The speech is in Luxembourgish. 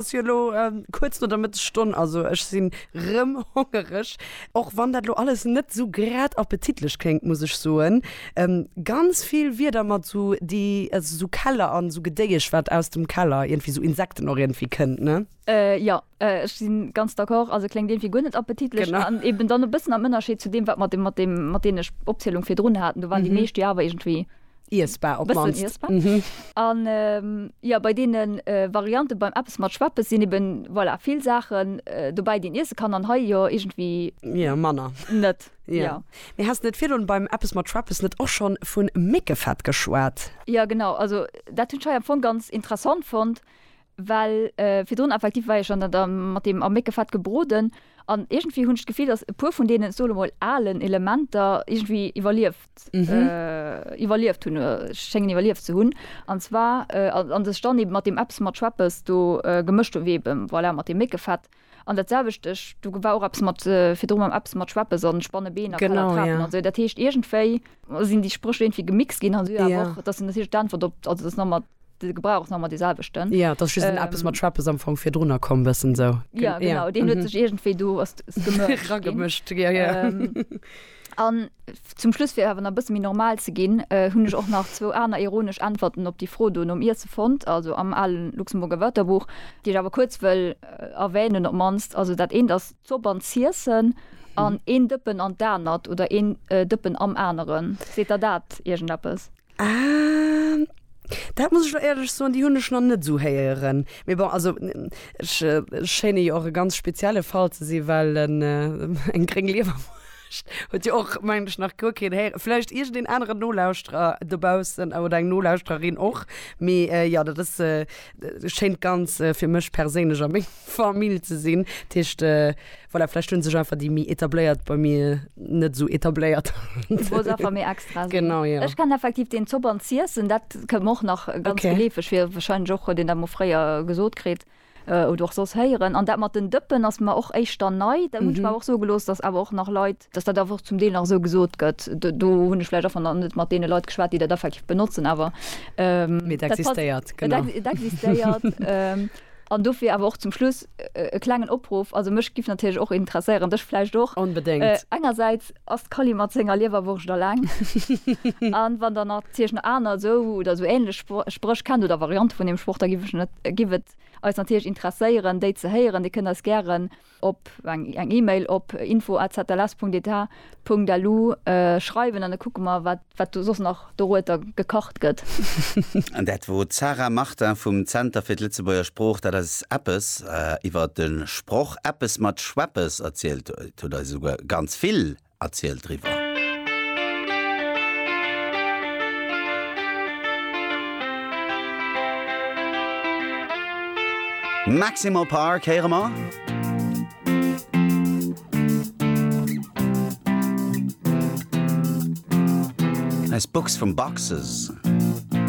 Ass jo elo kuerz no der Mëttesstonn, also ech sinn rëm hongereg, och wann dat elo alles net sou grad appetitlech kléngt, muss ech soen. Ganz vill Wierder mat sou déi, also sou Keller an sou Gedéiesch wat aus dem Keller, iergendwéi sou Insekten och iergendwéi kënnt, ne? Jo, ech si ganz d'accord, also kléngt iergendwéi guer net appetitlech an eben dann e bëssen am Ënnerscheed zu deem wat mer mat deem, mat deene Opzielung virdrun haten, do waren déi meescht jo awer iergendwéi Iessbar op d'mannst. Bëssen iessbar. Mhm. An jo, bei deene Variante beim Eppes mat Schweppes sinn eben, voilà, vill Saachen dobäi, déi een iesse kann an hei jo iergendwéi. Jo, manner. Net. Jo. Jo. Mee has de net virdrun beim Eppes mat Schweppes net och schonn vu Méckefett geschwat? Jo, genau. Also dat hunn ech hei am Fong ganz interessant fonnt. Well virdrun effektiv war ech dann da mat deem a Méckefett gebroden an iergendwéi hunn ech d'Gefill, datt e puer vun deenen, ech sot emol, alen Elementer iergendwéi iwwerlieft, iwwerlieft hunn, schéngen iwwerlieft ze hunn. An zwar, an dass ech dann eeben mat deem Eppes, mat Schweppes do gemëscht hunn, wéi eebe voilà mat deem Méckefett. An dat selwecht, ech, do war och eppes mat virdru mam eppes mat Schweppes an Spannebeen a Kalatrapen an sou, dat heescht iergendwéi sinn déi Spréch iergendwéi gemixt ginn an sou, awer och, dat sinn natierlech d'Äntwert op, also dat ass nach mat, de Gebrauch ass nach mat dee selwechten. Jo, dat ass just den eppes mat Schweppes am Fong virdrunner komm, bëssen sou. Jo, genau, deen huet sech iergendwéi do, ass, ass gemëscht ginn. Ragemëscht, jo, jo. An zum Schluss, fir awer nach e bësse méi normal ze ginn, hunn ech och nach zwou aner ironesch Äntwerten op déi Fro do nom Iesse fonnt, also am ale Luxemburger Wörterbuch, déi ech awer kuerz wëll erwänen op d'mannst. Also dat eent ass d'Zopp an d'Ziessen an een Dëppen an d'anert oder een Dëppen am aneren. Seet der dat iergendeppes? Ah, dat muss ech lo éierlech soen, déi hunn ech nach net esou héieren. Mee bon, also ech schéine jo och e ganz spezielle Fall ze sinn, well en eng gréng Liewerwurscht huet jo och, mengen ech, nach guer keen héieren. Vläicht iergendeen aneren Nolauschterer dobaussen oder eng Nolauschtererin och. Mee jo, dat ass, schéint ganz, fir mech perséinlech a meng. Famill ze sinn. Dat heescht, voilà, vläicht hu sech einfach déi méi Etabléiert bei mir net esou etabléiert. Du wolls einfach méi extra sinn. Genau, jo. Ech kennen effektiv deen Zopp an z'iessen, dat kënnt mer och nach ganz geleefeg vir. Okay. Wahrscheinlech och, huet een dat mol fréier gesot kritt oder och soss héieren. An dat mat den Dëppen ass mer och éischter nei. Da hunn ech mer awer och soe gelooss, dass awer och nach Leit, dass dat awer och zum Deel nach esou gesot gëtt. Do hunn ech vläicht einfach nach net mat deene Leit geschwat, déi dat effektiv benotzen, awer. Mee et existéiert, genau. Et existéiert. An dofir awer och zum Schluss e klengen Opruff, also mech giff natierlech och interesséieren, dech vläicht och, engersäits ass d'Kali mat senger Liewerwurscht alleng a wann der natierlech nach aner esou oder esou ähnlech Spréch kennt oder Variante vun deem Sproch, da giff et eis natierlech interesséieren déi ze héieren. Dir kënnt eis gären op eng Email op info@zls.etat.lu schreiwen an da kucke mer wat do soss nach dorueter gekacht gëtt. An dat wor d'Sarah Martin vum Zenter fir d'Lëtzebuerger Sprooch, dat eis eppes iwwer de Sproch eppes mat Schweppes erzielt huet. Huet eis esouguer ganz vill erzielt driwwer. Maximal Park héiere mer. Eis Box vum Boxes.